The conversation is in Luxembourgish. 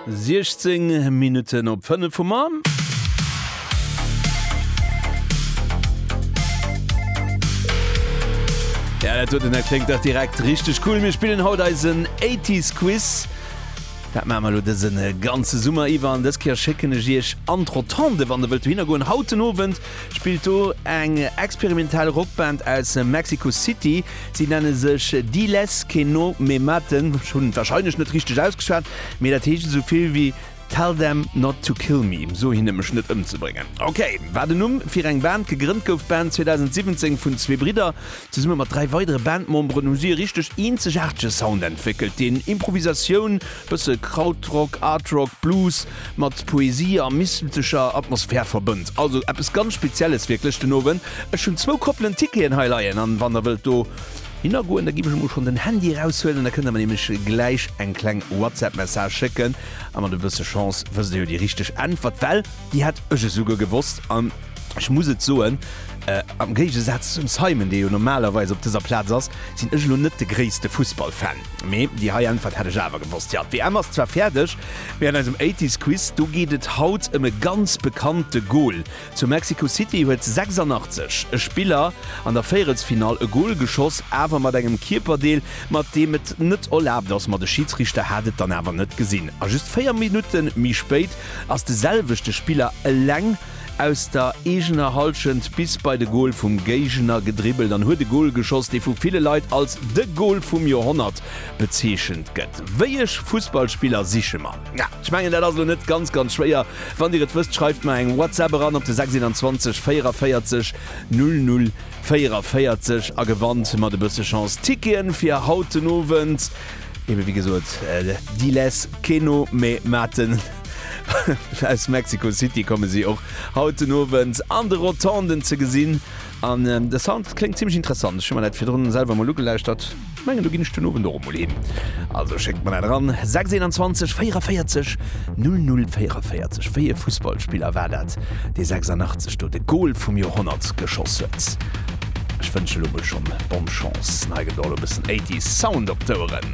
16 Minutten op 5 vum Moien. Ja, dat huet den Här Kléngt dach direkt richteg cool. Mir spillen haut eisen 80s Quiz. Dat maache mer elo dësen ganze Summer iwwer an dës Kéier schécken ech Iech an d'Rotonde, wann Der wëllt dohinner goen. Haut den Owend spillt do eng experimentell Rockband aus Mexico City. Si nenne sech Diles que no me maten, ech hunn et wahrscheinlech net richteg ausgeschwat, mee dat heescht esou vill wéi Tell them not to kill me, so hinne mech net ëmzebréngen. Ok, war den Numm fir eng Band. Gegrënnt gouf d'Band 2017 vun zwee Bridder. Zesumme mat dräi weidere Bandmemberen hu si e richteg eenzegaartege Sound entwéckelt, deen Improvisatioun, bësse Krautrock, Art Rock, Blues, Mat Poesie a mystezecher Atmosphär verbënnt. Also eppes ganz Spezielles wierklech den Owend. Ech hunn zwou Koppelen Ticketen hei leien an wann der wëllt do hinner goen, da giff ech emol schonn den Handy eraushuelen, da kënnt der mer nämlech gläich eng kleng Whatsapp Message schécken a mat e bësse Chance wësst der jo déi richteg Äntwert, well déi hat ech esouguer gewosst an ech muss et soen, am Géigesaz zum Simon, dee jo normalerweis op dëser Plaz ass, sinn ech elo net de gréisste Fussballfan. Mee déi hei Äntwert hätt ech awer gewosst. Jo, d'WM ass zwar fäerdeg, mee an eisem Eighties Quiz, do geet et haut ëm e ganz bekannte Gol. Zu Mexico City huet 86 e Spiller an der Véierelsfinall e Gol geschoss, awer mat engem Kierperdeel, mat deem et net erlaabt ass. Ma de Schidsriichter hat et dann awer net gesinn a just 4 Minutte méi spéit ass de selwechte Spiller eleng Aus der eegener Hallschent bis bei de Gol vum Géigner gedribbelt an huet e Gol geschoss, dee vu ville Leit als de Gol vum Joerhonnert bezeechent gëtt. Wéi ech Fussballspiller siche mer? Ja, ech mengen dat ass elo net ganz, ganz schwéier. Wann Dir et wësst, schreift mer eng WhatsApp eran op de 621 44 00 44 a gewannt mat e bësse Chance Ticketen fir haut den Owend, ebe wéi gesot, Diles Keno, mä Maarten. Aus Mexico City komme si och haut den Owend an de Rotonden ze gesinn. An de Sound kléngt zimmlech interessant. Ech hu mer dat virdrun selwer mol ugelauschtert. Ech mengen do ginn ech den Owend och emol hin. Also schéckt mer dat eran, 6 21 44 00 44. Wéi ee Fussballspiller war dat, dee 86 do de Gol vum Joerhonnert geschoss huet? Ech wënsche lo mol schonn Bonne Chance. An hei gëtt och elo e bëssen 80s Sound op d'Oueren.